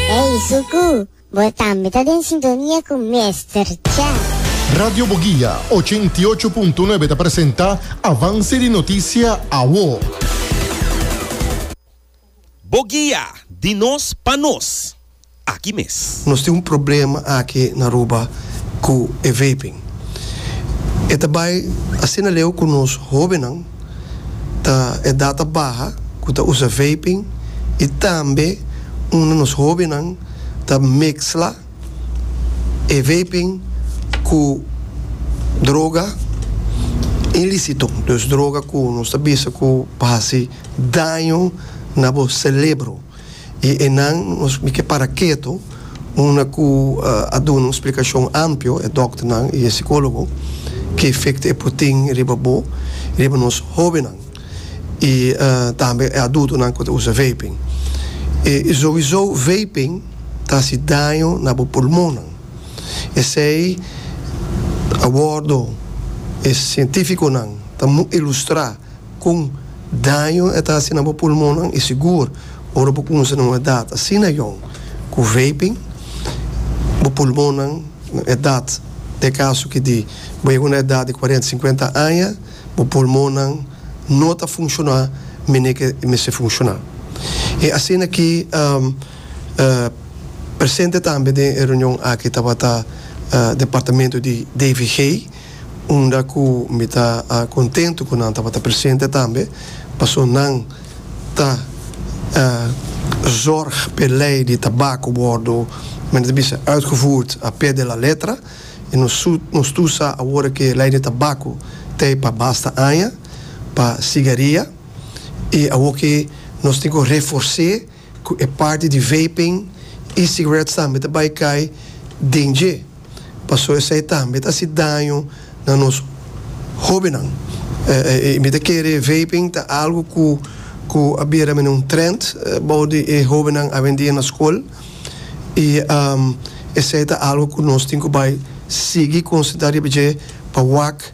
Ey Suku, bo tambe ta den sintonia cu Mester Cha. Radio Boguia ochenta i ocho punto nuebe ta presenta Avance di Noticia Awo. Boguia, di nos pa nos, aki mes. Nos tin un problema aki na Aruba cu e vaping. E ta bay asina leu cu nos hobennan. ta edad ta baha cu ta usa vaping y tambe un di nos hobennan ta mezcla e vaping cu droga ilicito, dus droga cu nos ta bisa cu por haci daño na bo celebro. i e nan nos mi ke para ketu unda ku a duna un splikashon ampio e dòkternan i e sikólogo ke efekto e por tin riba bo i riba nos hóbennan i tambe e adultonan ku ta usa vaping. I souiso vaping ta hasi daño na bo pulmonnan. Esei a wòrdu e sientífikonan ta ilustrá. Kon daño e ta hasi na bo pulmonnan? I sigur, ora bo kumsa na un edat asina yòn ku vaping, bo pulmonnan na edat, na e kaso ki di bo yega na un edat di kuarenta, sinkuenta aña, bo pulmonnan no ta funshoná manera ke mester funshoná. I asina ki presente tambe den e reunion aki tabata Departamento di DVG, unda ku mi ta kontentu ku nan tabata presente tambe, pasobra nan ta zorg pa e lei di tabako wòrdu, men nan ta bisa, uitgevoerd a pie de la letra, i nos tu sa awor ku e lei di tabako ta e pa basta aña, pa sigaria, i awor ki nos tin ku refors'é. ku e parti di vaping i sigaret tambe ta bai kai den dje, paso esei tambe ta hasi daño na nos hóbennan. I mi ta kere vaping ta algu ku a bira mene un trènt bou di e hóbennan awendia na skol, i esei ta algu ku nos tin ku bai sigui konsentrá riba dje pa wak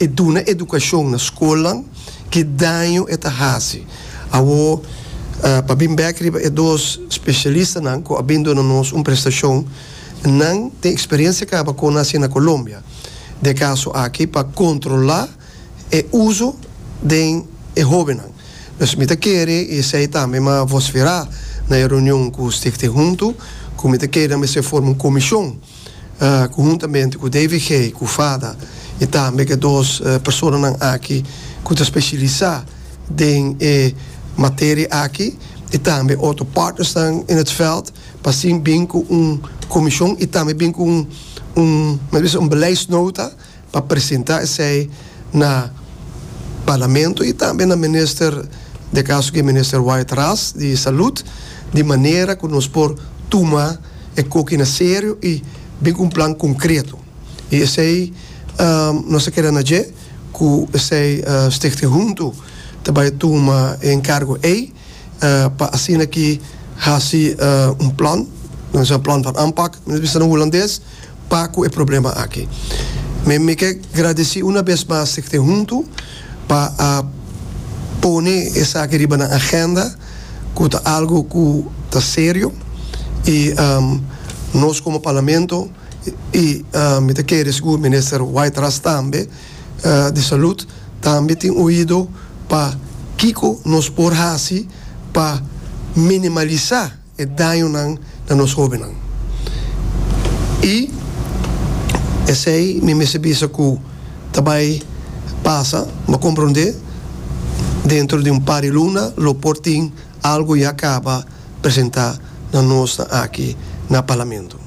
E duna edukashon na skolnan, ki daño e ta hasi? Awor, pa bin bèk riba e dos spesialistanan ku a bin duna nos un prestashon, nan tin eksperiensia kaba kon a hasi na Kolombia den e kaso aki pa kontrolá e uso den e hóbennan. Pues mi ta kere i esei tambe mi a vosferá na e reunion ku Stichting Huntu, ku mi ta kere nan mester forma un komishon, conhuntamente cu David Gey cu Fada y tambe ca dos personanan aki cu ta specialisa den e materia aki y tambe otro partnersnan in het veld pa así bin cu un comision y tambe bin cu un, men ta bisa, un beleidsnota. pa presenta esey na Parlamento y tambe na Minister, den e caso aki Minister Wyatt Ras di Salud, di manera cu nos por tuma e coki na serio y bin cu un plan concreto. Y esey nos ta keda na dje cu esey Stichting Huntu ta bay tuma e encargo ey. pa asina ki hasi un plan nan bisa plan van aanpak nan bisa na hulandes pa ku e problema aki mi mi ke gradisi una bes mas di te huntu pa a pone esaki riba nan agenda ku ta algu ku ta serio i nos komo parlamento i mi ta kere sigur minister White Ras tambe di salud tambe tin oido pa kiko nos por hasi pa minimalisa e dañonan na nos hobennan. I esei mi mester bisa ku ta bai pasa, bo komprondé, dentro di un par di luna lo por tin algu ya kaba presentá na nos aki na Parlamento.